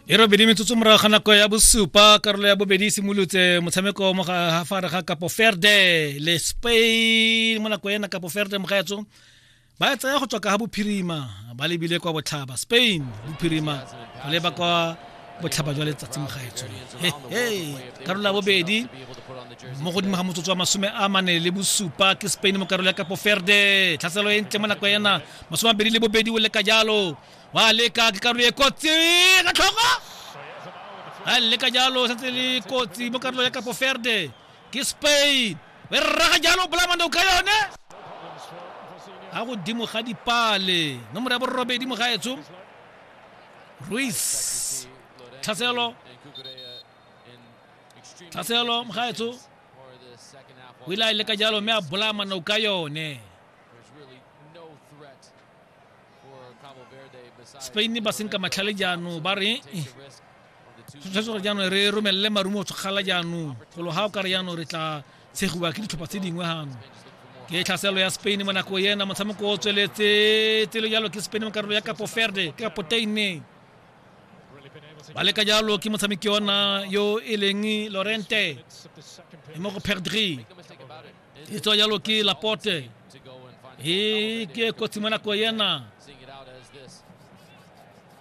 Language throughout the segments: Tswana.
e robedi metsotso morago ga nako ya bosupa karolo ya bobedi e simolotse motshameko mo gafare ga kapo ferde le spain mo nako ena kapo ferde mogaetso ba e tsaya go tswa ka ga bophirima ba lebile kwa botlhaba spain bophirima go leba kwa botlhaba jwa letsatsi mo gaetsong karolo ya bobedi mo godimo ga motsotso wa masome a mane le bosupa ke spain mo karolo ya kapo ferde tlhaselo e ntle mo nako ena masome abedi le bobedi o leka jalo wa leka ke karolo e kotsi ka tlhogo a leka jalo setse le kotsi mo karolo ya kapo ferde ke spain e rraga jalo bolamando ka yone ga godimo ga dipale nomoro ya borobedi mo gaetsong Ruiz Tlhaselo Tlhaselo Mgaetso o ile a e leka jalo mme a bolaya manao ka yone spain ba senka matlhale jaanong ba re tshwanetse gore jaanong re romelele marumo tshogala jaanong golo ga o kare jaanong re tla tshegiwa ke ditlhopha tse dingwe gangwe ke tlhaselo ya spain mo nako ena motshameko o tsweletse tselo jalo ke spain mo karolo ya kapo ferde ke kapo teine ba leka jalo ke motshameki ona yo e leng lorente e mo go perdri e tswa jalo ke laporte e ke kotsi mo nako ena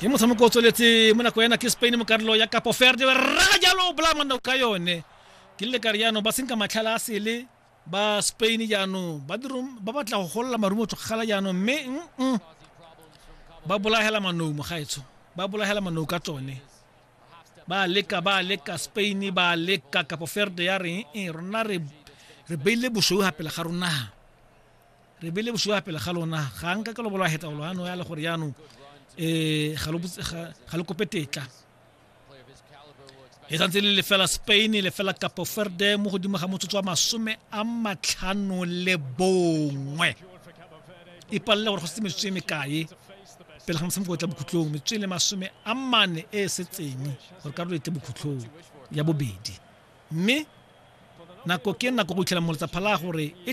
ke motshameko o tsweletse mo nako ena ke spain mo karolo ya capo verde ba rraga jalo bolamana ka yone ke le kare jaanong ba senka matlhala a sele ba spain jaanong ba dirom- ba batla go golola marumo tlogala jaanong mme mm-mm, ba bolagela manou mogaetsho ba bolagela manou ka tsone ba leka ba leka spain ba leka capo verde ya reng e rona re re beile bosweu ga pele ga rona re be le bosuwa pele ga lona ga nka ke lo bolwa hetsa lo ano ya le gore yano eh ga lo ga lo kope tetla e santse le lefela spain lefela capo verde mo godimo ga motsotso wa masome a matlhano le bongwe e palela gore go se metsotso e mekae pele ga motshameko o tla bokhutlong metsotso e le masome a mane e e setseng gore karolo e tle bokhutlong ya bobedi mme nako ke nako go itlhela moletsa phala gore e